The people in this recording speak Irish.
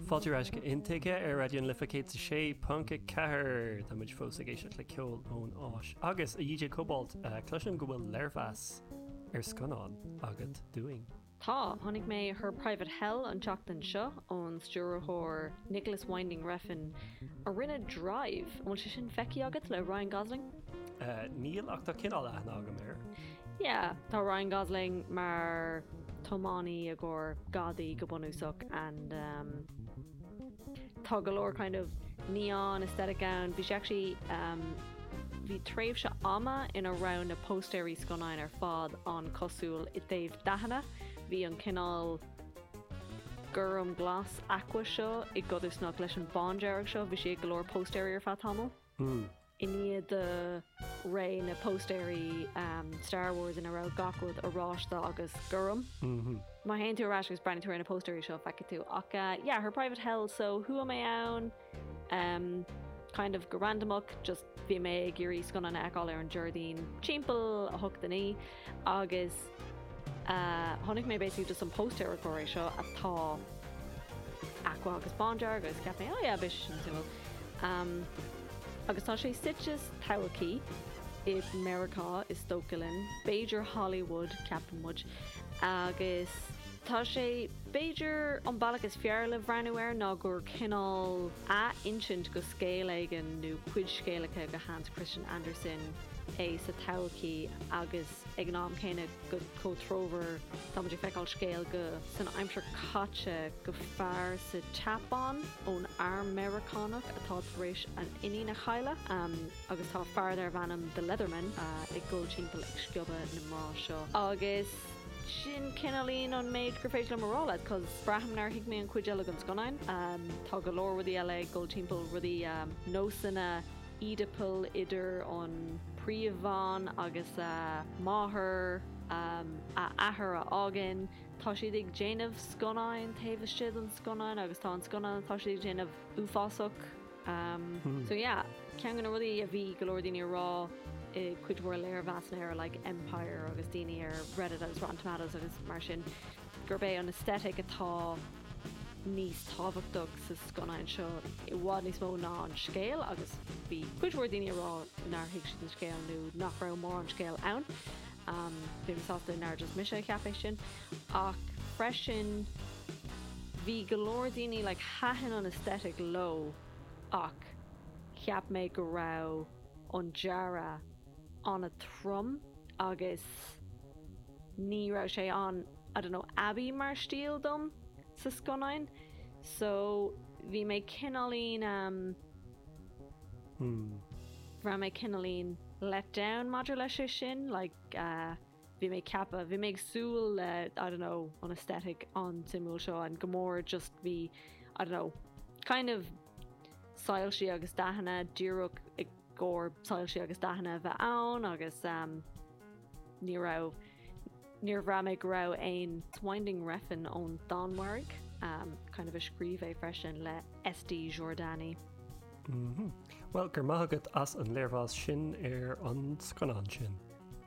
Fáilte ar ais go Intuigthe ar Raidió na Life 106.4. Tá muid fós ag éisteacht le ceol ón Áis agus a DJ Cobalt. Cloisim go bhfuil léirmheas ar scannán agat dúinn. Tá. Tháinig mé ar Her Private Hell an tseachtain seo ón stiúrthóir Nicolas Winding Refn a rinne Drive. An bhfuil sé sin feicthe agat le Ryan Gosling? Níl ach tá cineál aithne agam air. Yeah, tá Ryan Gosling mar tiománaí i gcomhair gadaí go bunúsach and umm tá go leor kind of neon aesthetic ann. Bhí sé actually umm bhí tréimhse ama ina raibh na póstaeirí scannáin ar fad ann cosúil i dtaobh dathanna. Bhí an cineál gorm glas aqua seo i gcodarsnacht leis an bándearg seo. Bhí sé ag go leor póstaeirí ar feadh tamaill. I ndiaidh de ré na póstaeirí Star Wars ina raibh gach rud oráiste agus gorm. Má théann tú ar ais agus breathnaíonn tú ar na póstaeirí seo feicfidh tú ach yeah, Her Private Hell so chuaigh mé ann? Umm kind of go randamach just bhí mé ag iarraidh scannán a fheiceáil ar an Déardaoin timpeall a hocht, a naoi. Agus tháinig mé basically just an póstaer corcra seo atá aqua agus bándearg agus cheap mé oh yeah beidh sé sin suimiúil. Agus tá sé suite sa todhchaí i Meiriceá is dócha linn, b'fhéidir Hollywood ceapann muid. Agus tá sé b'fhéidir an bealach is fearr le breathnú air ná gur cineál. athinsint de scéal éigin nó cuid scéalacha de Hans Christian Andersen é sa todhchaí agus ag an am céanna go comhthreomhar tá muid ag feiceáil scéal de san aimsir caite de fear sa tSeapáin ón arm Meiriceánach atá tar éis a iníon a chailleadh agus tá fear darb ainm The Leather Man ag dul timpeall ag sciobadh na mná seo agus Sin cineál an méid gur féidir liom a rá leat cos braithim nár thuig mé an chuid eile den scannán. Tá go leor rudaí eile ag dul timpeall, rudaí, nósanna Oedipal idir an príomhbhean agus a máthair, a athair a fhágann, tá siad ag déanamh scannáin taobh istigh den scannán agus tá an scannán atá siad ag déanamh uafásach. So yeah, ceann de na rudaí a bhí go leor daoine ag rá i gcuid mhór léirmheasanna ar like Empire agus daoine ar Reddit agus Rotten Tomatoes agus mar sin, gurb é an aesthetic atá níos tábhachtach sa scannán seo i bhfad níos mó ná an scéal agus bhí cuid mhór daoine ag rá nár thuig siad an scéal nó nach raibh mórán scéil ann. Bhí mé sásta nár just mise a cheap é sin. Ach freisin bhí go leor daoine like thaitin an aesthetic leo ach cheap mé go raibh an dearadh an-trom agus ní raibh sé an I don't know ab é mar stíl dom sa scannán so bhí mé cineáilín um bhraith mé cineáilín let down maidir leis sin like uh. Bhí mé ag ceapadh, bhí mé ag súil le I don't know an aesthetic an-suimiúil seo ann go mór just bhí I don't know kind of soilsí agus dathanna, díreach i gcomhair soilsí agus dathanna a bheith ann agus ehm ní raibh, níor bhraith mé go raibh aon Winding Refn ón Danmhairg ehm kind of a scríobh é freisin le Esti Jordani. Mh. Bhuel, go raibh maith agat as an léirmheas sin ar an scannán sin.